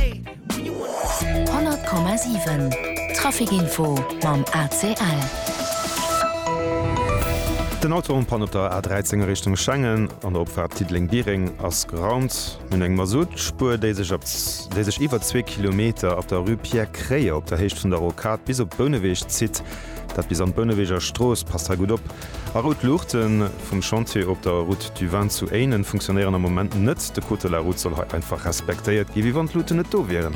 100,7 Trafic-Info mam ACL. Den Autorenpan op der A13 a Richtung Schengen an der Opfahrt Diddeleng-Biereng ass geraumt. Nun eng Mazoutspur, déi sech op déi sech iwwer zwee Kilometer op der Rue Pierre Kreie op der Héicht vun der Rocade bis op Bouneweg zitt. Dat bis an d'Bouneweger Strooss. Passt hei gutt op. A rout Luuchte vum Chantier op der Route du Vin zu Éinen funktionéieren am Moment net. De Code de la Route soll hei einfach respektéiert gi wéi wann d'Luuten net do wieren.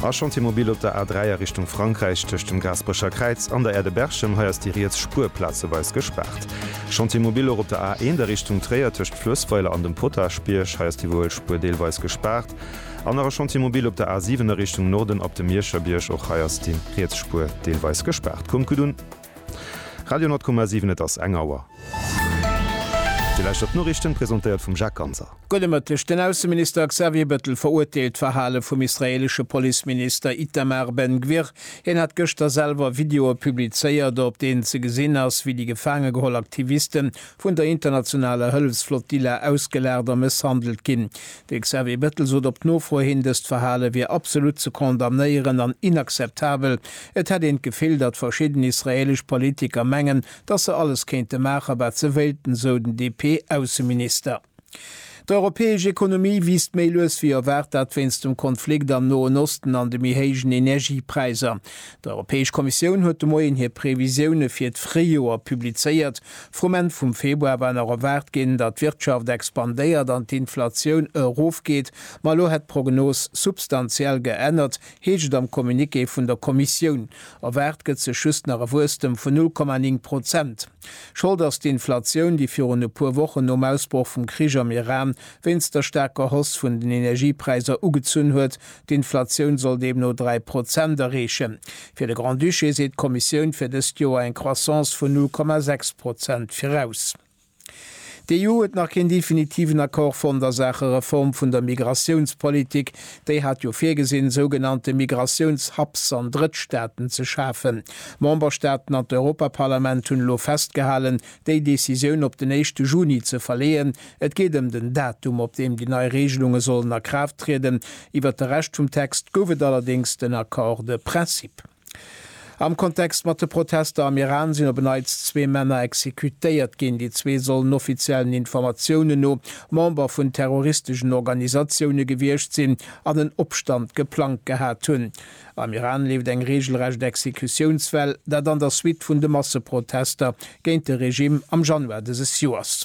A Chantier Mobile op der A3 a Richtung Frankräich tëscht dem Gaasperecher Kräiz an der Aire de Berchem, hei ass déi riets Spuer plazeweis gespaart. Chantier Mobile och op der A1 a Richtung Tréier tëscht Fluessweiler an dem Potagebierg, hei ass déi wuel Spuer deelweis gespaart. An nach e Chantier Mobile op der A7 a Richtung Norden ab dem Mierscherbierg, och hei ass déi riets Spuer deelweis gespaart. Kommt gutt un. Radio 10,7 Et ass eng Auer. Dir lauschtert d'Noriichten, presentéiert vum Jacques Ganser. Gudde Mëtteg. Den Ausseminister Xavier Bettel verurteelt d'Verhale vum israeelesche Policeminister Itamar Ben-Gvir. Hien hat gëschter selwer Videoe publizéiert, op deenen ze gesinn ass, wéi déi gefaange geholl Aktiviste vun der internationaler Hëllefsflottilla ausgelacht a mësshandelt ginn. De Xavier Bettel sot op d'Nofro hin, dëst Verhale wier absolut ze condamnéieren an inakzeptabel. Et hätt een d'Gefill, datt verschidden israeelesch Politiker mengen, datt se alles kéinte maache wat se wéilten, sou den DP-Ausseminister. D'europäesch Ekonomie wiisst méi lues wéi erwaart, dat wéinst dem Konflikt am Noen Osten an de méi héijen Energiepräisser. D'Europäesch Kommissioun huet de Moien hir Previsioune fir d'Fréijoer publizéiert. Vrum Enn vum Februar war nach erwaart ginn, datt d'Wirtschaft expandéiert an d'Inflatioun erofgeet, ma elo hätt d'Prognos substantiell geännert, heescht et am Communiqué vun der Kommissioun. Erwaart gëtt sech just nach e Wuesstem vun 0,9 Prozent. Schold ass d'Inflatioun, déi virun e puer Wochen nom Ausbroch vum Krich am Iran wéinst der staarker Hausse vun den Energiepräisser ugezunn huet, D'Inflatioun soll deemno dräi Prozent erreechen. Fir de Grand-Duché seet d'Kommissioun fir dëst Joer eng Croissance vun null Komma sechs Prozent viraus. D'EU huet nach keen definitiven Accord fonnt a Saache Reform vun der Migratiounspolitik. Déi hat jo virgesinn, sougenannte Migratiouns-Hubs an Drëttstaaten ze schafen. D'Memberstaaten an d'Europaparlament hunn elo festgehalen, déi Decisioun op den éischte Juni ze verleeën, Et geet ëm den Datum, op deem déi nei Reegelunge sollen a Kraaft trieden. Iwwert de Rescht vum Text gouf et allerdéngs den Accord de principe. Am Kontext mat de Protester am Iran sinn op en Neits zwee Männer exekutéiert ginn. Déi zwee sollen offiziellen Informatiounen no Member vun terroristeschen Organisatioune gewiescht sinn an en Opstand geplangt gehat hunn. Am Iran leeft eng reegelrecht Exekutiounswell, dat an der Suite vun de Masseprotester géint de Regimm am Januar dëses Joers.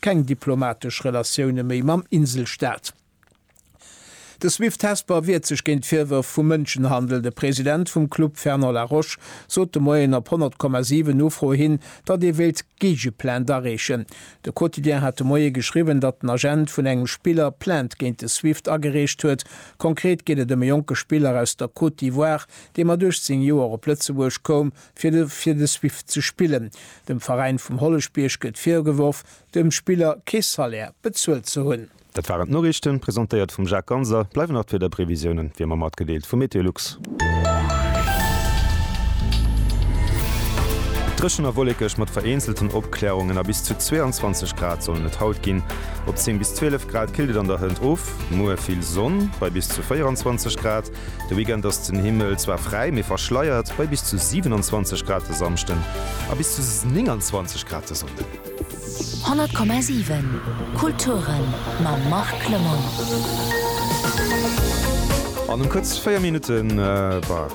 keng diplomatesch Relatioune méi mam Inselstaat. De Swift Hesper wiert sech géint Virwërf vu Mënschenhandel. De President vum Club Fernand Laroche sot de Moien op 100,7 Nofro hin, datt ee wéilt Géigeplainte areechen. De Quotidien hat de Moie geschriwwen, datt den Agent vun engem Spiller Plainte géint de Swift agereecht huet. Konkret geet et ëm e jonke Spiller aus der Côte d'Ivoire, dee mat 18 Joer op Lëtzebuerg koum, fir de fir de Swift ze spillen. Dem Veräin vum Holleschbierg gëtt virgeworf, dem Spiller kee Salaire bezuelt ze hunn. Dat waren d'Noriichten, presentéiert vum Jacques Ganser. Bleiwen nach d'Wiederprevisiounen wéi ëmmer matgedeelt vu Meteolux. Dréchen a wollekeg mat vereenzelten Opklärungen a bis zu 22 Grad sollen et haut ginn. Op 10 bis 12 Grad killt et an der Hënt of. Muer vill Sonn bei bis zu 24 Grad. De Weekend ass den Himmel zwar fräi, mee verschleiert bei bis zu 27 Grad de Samschden a bis zu 29 Grad de Sonnden. 100,7 Kulturen mam Marc Lemonnier. An um kuerz 4 Minutten, bah,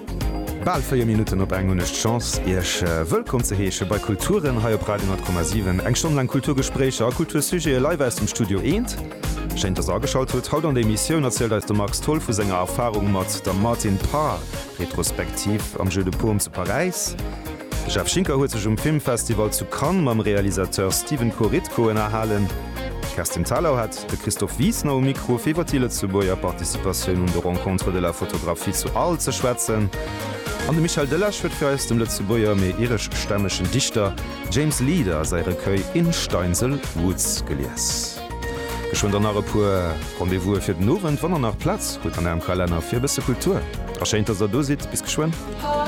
bal 4 Minutten op eng hunn ech d'Chance iech wëllkomm ze heesche bei Kulturen hei op Radio 100,7. Eng Stonn laang Kulturgespréicher a Kultursujete live aus dem Studio Eent. Schéin dass der ageschalt hutt. Haut an der Emissioun erzielt eis de Max Tholl vu senger Erfarung mat der Martin Parr Retrospektiv am Jeu de Paume zu Paräis. De Jeff Schinker huet sech um Filmfestival zu Cannes mam Realisateur Stephen Korytko ënnerhalen. D'Kerstin Thalau hat de Christophe Wiesner um Mikro fir iwwer déi Lëtzebuerger Participatioun un de Rencontres de la photographie zu Arles ze schwätzen. An de Michel Delage huet fir eis dem Lëtzebuerger mee ireschstämmegen Dichter James Leader säi Recueil In Steinsel Woods gelies. Ech hunn der nach e puer Rendez-vous'e fir den Owend. Wann der nach Plaz hutt an ärem Kalenner fir e bësse Kultur, ass schéin, dass der do sidd. Bis geschwënn.